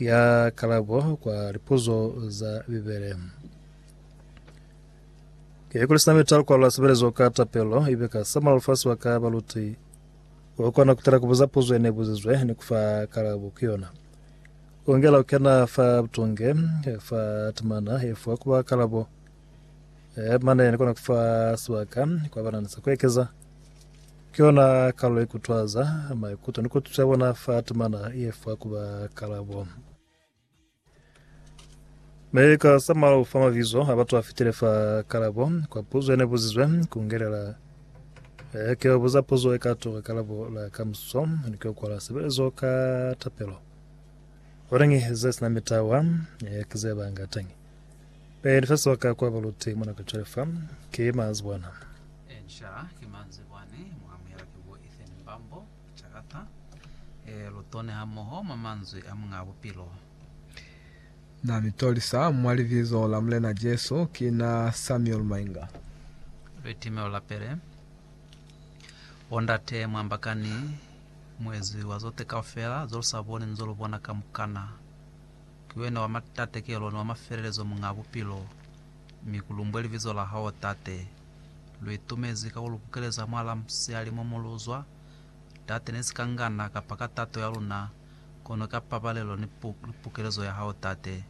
Ya kalabo kwa lipuzo za Bibele. Ke kuli sina mita lukwalula sebelezo ka tapelo, ibe ka samula lufasi wa ka baluti. O kona kutela kubuza puzo ene buzizwe ni kufa kalabo ku yona. Ungela ukena fa butunge fa temana efuwa kuba kalabo. Eh, mane ni kona kufa sibaka kwa bana nisa kuekeza ke yona kalo ikutwaza maikuto ni kututa bona fa timana iye fa kuba kalabo me ka samalo fa mavizo a batu a fitile fa kalabo kwa puzo ene buzizwe kungelela eh, ke buza puzo e ka toka kalabo la ka muso ni ke kwala sebelezo ka tapelo orengi ze sina mitawa eh, ke ze banga tangi Pele sa swa ka kwa balute mona ka cwale fa, ke mazi bwana. Enca ke mazi bwani, mu amuhela ki bo Ethan Mbambo, Chakata, e, Lutone ha moho mwa manzwi a Muñaa Bupilo. Na mi tolisa mwa Libizo la Mulena Jesu, ki na Samuel Mainga. Litimelo la pele. Bo ndate, mu ambakani, Muezi wa zote kaufela, zo lu sa boni ni zo lu bona kamukana. Ki wena wa matatekelo ni wa mafelelezo Muñaa Bupilo, mi ku lumbwe libizo la Hao, Tate. Lu itumezi ka ku lu kukeleza mwalaa musiyali mo mu lu zwa, Tate, ne si ka ngana kapa ka tato ya luna, kono ka pabalelo ni pukelezo ya Hao, Tate.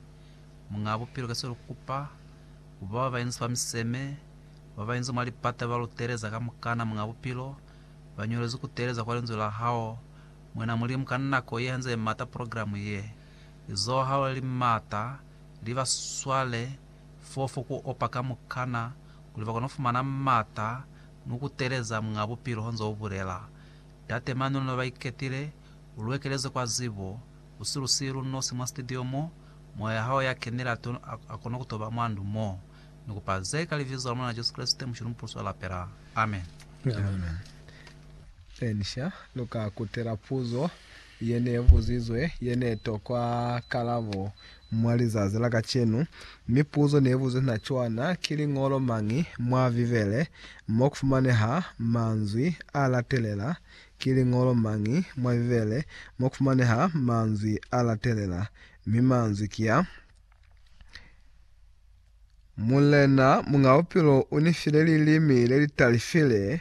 Muñaa Bupilo, ki se lu kupa, ku ba ba ba inzi fa miseme, ba ba inzi mwa lipata ba Lu teeleza kamukana, Muñaa Bupilo, ba ñolezi ku teeleza kwa Linzwi la Hao, Mwena Mulimu, ka nako ye hanze ye mata, programu ye. lizohalo li m'ata li ba swale fofo ku opa kamukana kuli ba kono fumana m'ata ni ku teleza mwa bupilo, honze ubulela. Ndate mani luna ba iketile, u lu ekeleze kwa zibo, u si lu siyi lu nosi mwa studio mo, moya hao ya kenile a to a kono ku to ba mwa ndu mo. Ni kupa ze ka Libizo la Mulena Jesu Kreste, Mushe lu mu pulusa lapela. Amen. Amen. Amen. Ni sha lu ka kutela puzo ye ne buzizwe ye ne tokwa kalabo mwa lizazi la kacenu. Mipuzo ne buzwi na cwana, Ki liñolo mañi mwa Bibele mo ku fumaneha manzwi a latelela? Ki liñolo mañi mwa Bibele mo ku fumaneha manzwi a latelela? Mi manzwi ki a, Mulena, Muñ'a Bupilo u ni file lilimi le li talifile,